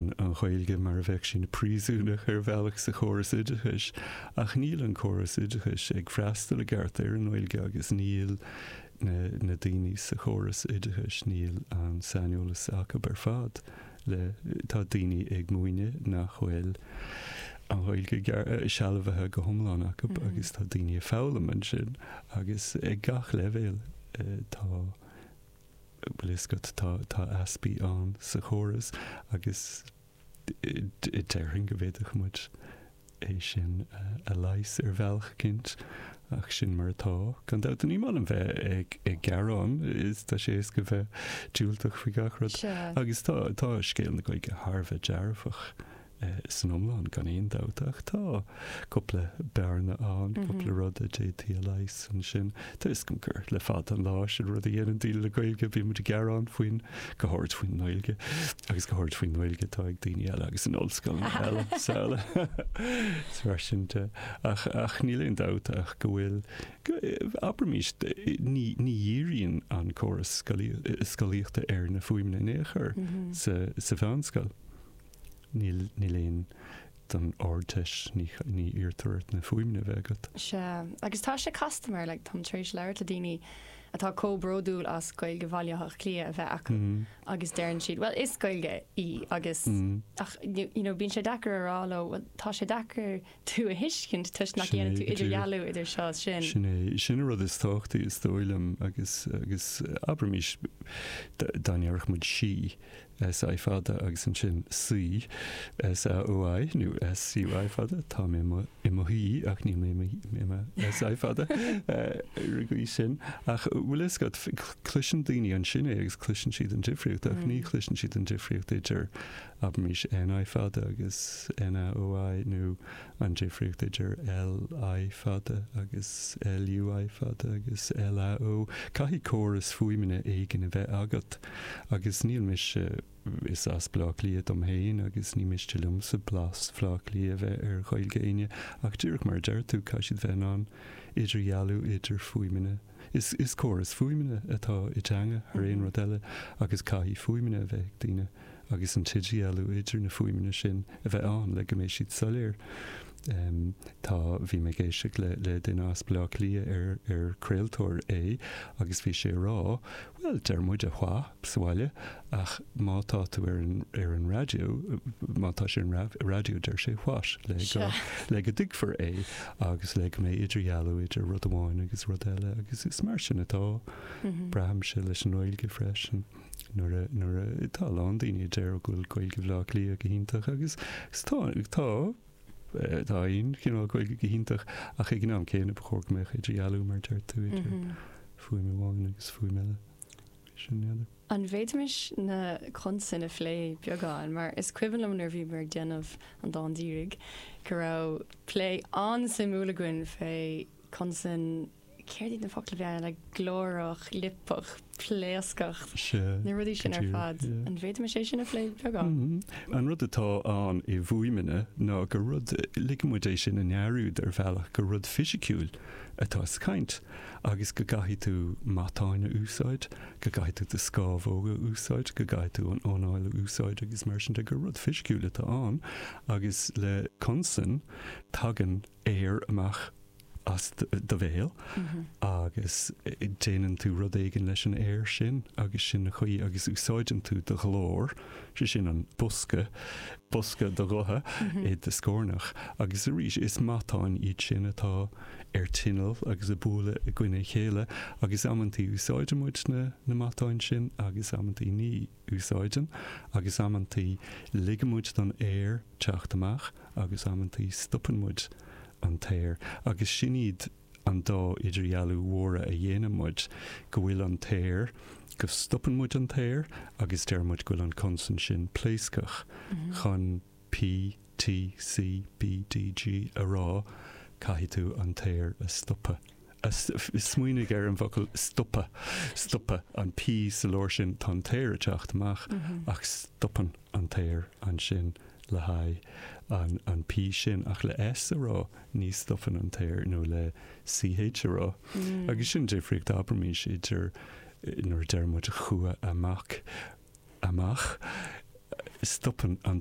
an Ghaeilge mar a bheadh sí ina príosúnach ar bhealach sa chóras oideachais ach níl an córas oideachais ag freastal i gceart ar an nGaeilge agus níl na daoine sa chóras oideachais, níl an saineolas acu ar fad le, tá daoine ag múineadh nach bhfuil an Ghaeilge sealbhaithe go hiomlán acu agus tá daoine ag foghlaim ansin agus ag gach leibhéal tá. bhfuil a fhios agat, tá, tá easpaí ann sa chóras agus déarfainn go bhféadfadh muid é sin a leigheas ar bhealach eicínt ach sin mar atá. Gan dabht, ní maith liom a bheith ag gearán is tá sé éasca bheith diúltach faoi gach rud. Agus tá, tá scéal na Gaeilge thar a bheith dearfach San iomlán, gan aon dabht, ach tá cúpla bearna ann, cúpla rud a d'fhéadfaí a leigheas ansin. Tá a fhios againn gur le fada an lá sin rud a dhéanann daoine le Gaeilge, bíonn muid ag gearán faoin, go háirid faoin nGaeilge, agus go háirid faoin nGaeilge atá ag daoine eile agus in ollscoileanna eile srl. So mar sin de, ach, ach níl aon dabht ach go bhfuil, abraimís, ní, ní dhíríonn an córas scolaíochta ar na fuaimeanna in aon chor sa, sa mheánscoil. Níl, ná don Ardteist, ní iarrtar ort na fuaimeanna a bheith agat. Sea, agus tá sé casta mar, like, táim tar éis labhairt le daoine atá comh bródúil as Gaeilge Bhaile Átha Cliath a bheith acu agus deireann siad, bhuel, is Gaeilge í agus, ach, you know, bíonn sé deacair a rá leo, bhuel, tá sé deacair tú a thuiscint toisc nach ndéanann tú idirdhealú idir seo is sin. Sin é, sin an rud is tábhachtaí is dóigh liom agus, agus, abraimís, dá ndéarfadh muid 'sí', SI fada agus ansin saoi, SAOI nó SUI fada, tá mé i mo shuí ach níl mé i mo SI fada ar an gcaoi sin. Ach bhfuil a fhios agat, cloiseann daoine ansin é agus cloiseann siad an difríocht ach ní chloiseann siad an difríocht idir, abraimis, NI fada agus NAOI nó an difríocht idir LI fada agus LUI fada agus LAOI. Caithfidh córas fuaimeanna éigin a bheith agat. Agus níl mise, is as Bleá Cliath dom fhéin agus ní miste liomsa blas Bhleá Cliath a bheith ar Ghaeilge éinne ach díreach mar a deir tú, caithfidh siad a bheith in ann idirdhealú idir fuaimeanna. Is, is córas fuaimeanna atá i dteanga thar aon rud eile agus caithfidh fuaimeanna a bheith ag daoine agus an t-idirdhealú idir na fuaimeanna sin a bheith ann le go mbeidh siad soiléir. Tá, bhí mé ag éisteacht le, le duine as Baile Átha Cliath ar, ar craoltóir é, agus bhí sé ag rá, bhuel, deir muid wha sa bhaile, ach má tá tú ar an, ar an raidió, má tá sé ar an raidió, deir sé what? le go, le go dtuigfear é, agus le go mbeidh idirdhealú idir rud amháin agus rud eile, agus is mar sin atá, braithimse, leis an nGaeilge freisin, nuair a, nuair a, tá a lán daoine a deir go bhfuil Gaeilge Bhaile Átha Cliath go hiontach, agus, agus tá, tá, Tá aon chineál Gaeilge go hiontach, ach ag an am céanna ba chóir go mbeadh idirdhealú, mar a deir tú, idir fuaim amháin agus fuaim eile. Bhí sin in eagar. An bhféadfaimis na consain a phlé beagán, mar is cuimhin liom nuair a bhíomar ag déanamh an dán dírigh go raibh plé an-suimiúil againn fé chonsain céard iad na focla bheaga eile, glórach, liopach, pléascach, na rudaí sin ar fad. An bhféadfaimis é sin a phlé beagán? An rud atá ann i bhfuaimeanna ná gur rud, ligeann muid é sin i ndearúd ar bhealach, gur rud fisiciúil atá sa chaint agus go gcaithfidh tú matáin a úsáid, go gcaithfidh tú do scámhóga a úsáid, go gcaithfidh tú an anáil a úsáid agus mar sin de, gur rud fisiciúil atá ann agus le consain tagann aer amach. as do bhéal agus déanann tú rud éigin leis an aer sin agus sin an chaoi agus úsáideann tú do ghlór, sé sin an bosca, bosca do ghutha i do scornach agus arís is matáin iad sin atá ar tinneall agus a' bualadh i gcoinne a chéile agus amantaí úsáideann muid na, na matáin sin agus amantaí ní. úsáideann, agus amantaí ligeann muid don aer teacht amach agus amantaí stopann muid an t-aer, agus sin iad an dá idirdhealú mhóra a dhéanann muid, go bhfuil an t-aer, go stopann muid an t-aer agus deir muid go bhfuil an consan sin pléascach chun. PTC, BDG a rá, caithfidh tú an t-aer a stopadh. Smaoinigh ar an bhfocal stopadh. Stopadh, an P sa lár sin, tá an t-aer ag teacht amach ach stopann an t-aer ansin le haghaidh an P sin. Ach le S a rá, ní stopann an t-aer, nó le CH a rá. Agus sin an difríocht, abraimís, idir nuair a deir muid chuaigh a mac amach, stopann an